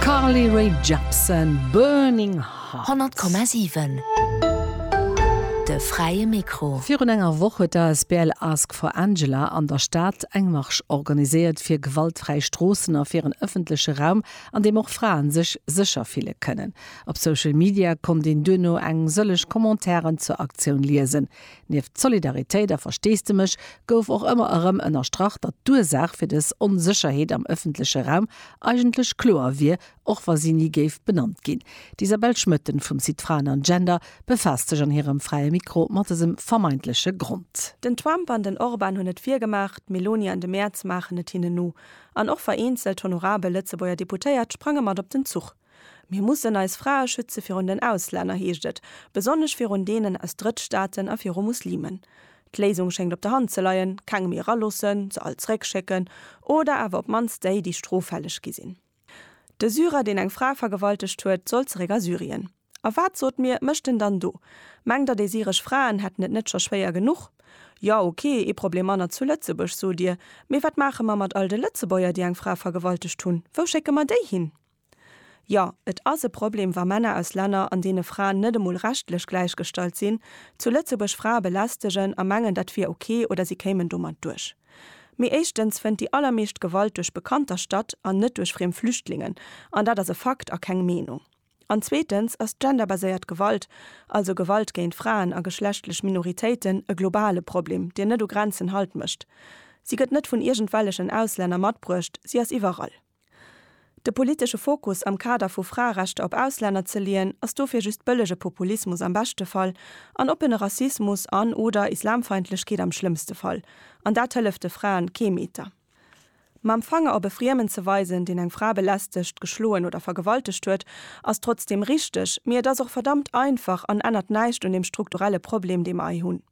Carly Rae Jepsen, Burning Hearts. 100,7 De fräie Mikro. Virun enger Woch huet d'Asbl Ask for Angela an der Stad eng Marsch organiséiert fir gewaltfräi Stroossen a fir en ëffentleche Raum, an deem och Fraen sech sécher fille kënnen. Op Social Media konnt een duerno eng sëllech Commentairen zur Aktioun liesen. Nieft Solidaritéit a Versteesdemech gouf och ëmmer erëm ënnerstrach, datt d'Ursaach fir dës Onsécherheet am ëffentleche Raum eigentlech kloer wier, och wa si ni géif benannt ginn. D'Isabelle Schmoetten vum Site Fraen an Gender befaasst sech an hirem Fräie Mikro mat dësem vermeintleche Grond. Den Trump an den Orban hunn et virgemaach, d'Meloni an de Merz maachen et hinnen no. An och vereenzelt honorabel Lëtzebuerger Deputéiert sprange mat op den Zuch. Mir mussen eis Frae schütze virun den Auslänner, heescht et, besonnesch virun deenen aus Drëttstaaten a viru Muslimen. D'Léisung schéngt op der Hand ze leien, keng méi eraloossen, se all zeréckschécken oder awer op d'mannst déi, déi stroffälleg gi sinn. De Syrer, deen eng Fra vergewaltegt huet, soll zeréck a Syrien. A wat, sot mir, mécht en dann do? Mengt Der, déi syresch Fraen hätten et net scho schwéier genuch? Jo, ok, ee Problem manner zu Lëtzebuerg, sot Dir. Mee wat maache mer mat all de Lëtzebuerger, déi eng Fra vergewaltegt hunn? Wou schécke mer déi hin? Jo, et ass e Problem, wa Männer aus Länner, an deene Fraen net emol rechtlech gläichgestallt sinn, zu Lëtzebuerg Frae belästegen a mengen, dat wier ok oder si kéimen domat duerch. Mee éischtens fënnt déi allermeescht Gewalt duerch Bekannter statt an net duerch friem Flüchtlingen, an dat ass e Fakt a keng Meenung. An zweetens ass genderbaséiert Gewalt, also Gewalt géint Fraen a geschlechtlech Minoritéiten, e globale Problem, deen net u Grenzen Halt mécht. Si gëtt net vun iergendwellechen Auslänner matbruecht, si ass iwwerall. De politesche Fokus am Kader vu Fraerechter op Auslänner ze leeën, ass dofir just bëllege Populismus am beschte Fall an oppene Rassismus an, oder Islamfeindlechkeet am schlëmmste Fall. An dat hëlleft de Fraen kee Meter. Mam Fanger op e Friemen ze weisen, deen eng Fra belästegt, geschloen oder vergewaltegt huet, ass trotzdeem richteg, mee et ass och verdammt einfach an ännert näischt un dem strukturelle Problem, dee mer hei hunn.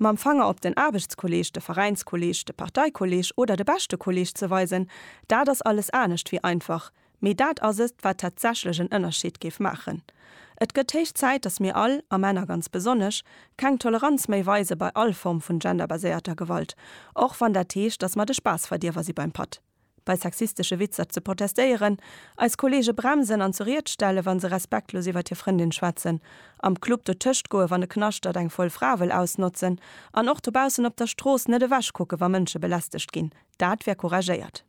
Mam Fanger op den Aarbechtskolleeg, de Veräinskolleeg, de Parteikolleeg oder de beschte Kolleeg ze weisen, dat ass alles anescht wéi einfach, mee dat ass et, wat tatsächlech en Ënnerscheed géif maachen. Et gëtt héich Zäit, dass mir all, a Männer ganz besonnesch, keng Toleranz méi weise bei all Form vun genderbaséierter Gewalt, och wann dat heescht, dass mer de Spaassverdierwer si beim Patt. bei sexistesche Witzer ze protestéieren, eis Kollege bremsen an zu Ried stellen, wa se respektlos iwwer hir Frëndin schwätzen, am Club dotëscht goen, wann e knaschtert, eng voll Fra wëll ausnotzen an och dobaussen op der Strooss net ewechkucken, wa Mënsche belästegt ginn, dat wär couragéiert.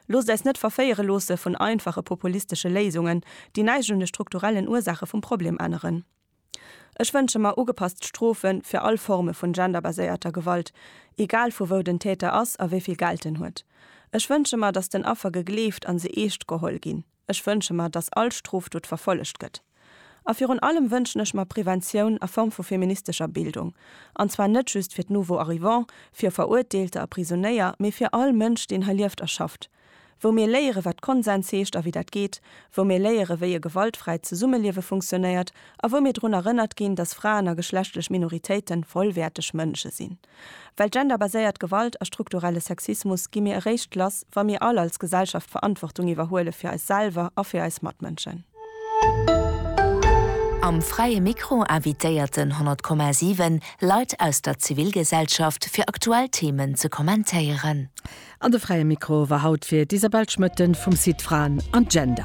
Loosst äis net verféiere loosse vun einfache populistesche Léisungen, déi näischt un de strukturellen Ursaache vum Problem änneren. Ech wënsche mer ugepasst Strofe fir all Forme vun genderbaséierter Gewalt, egal vu wou den Täter ass a wéivill Geld en huet. Ech wënsche mer, dass den Affer gegleeft an se eescht geholl ginn. Ech wënsche mer, dass all Strofdot verfollegt gëtt. A virun allem wënschen ech mer Preventioun a Form vu feministescher Bildung, an zwar net just fir d'Nouveau-arrivants, fir Verurteelte a Prisonéier, mee fir all Mënsch, deen hei lieft a schafft. wou mir léiere wat Konsens heescht a wéi dat geet, wou mir léiere wéi e gewaltfräit Zesummeliewe funktionéiert a wou mir drun erënnert ginn, dass Fraen a geschlechtlech Minoritéite vollwäerteg Mënsche sinn. Well genderbaséiert Gewalt a strukturelle Sexismus gi mir eréischt lass, wa mir all als Gesellschaft Verantwortung iwwerhuele fir eis selwer a fir eis Matmënschen. Am Fräie Mikro invitéierten 100,7 Leit aus der Zivilgesellschaft fir aktuell Themen ze kommentéieren. An de Fräie Mikro war haut fir d'Isabelle Schmoetten vum Site Fraen an Gender.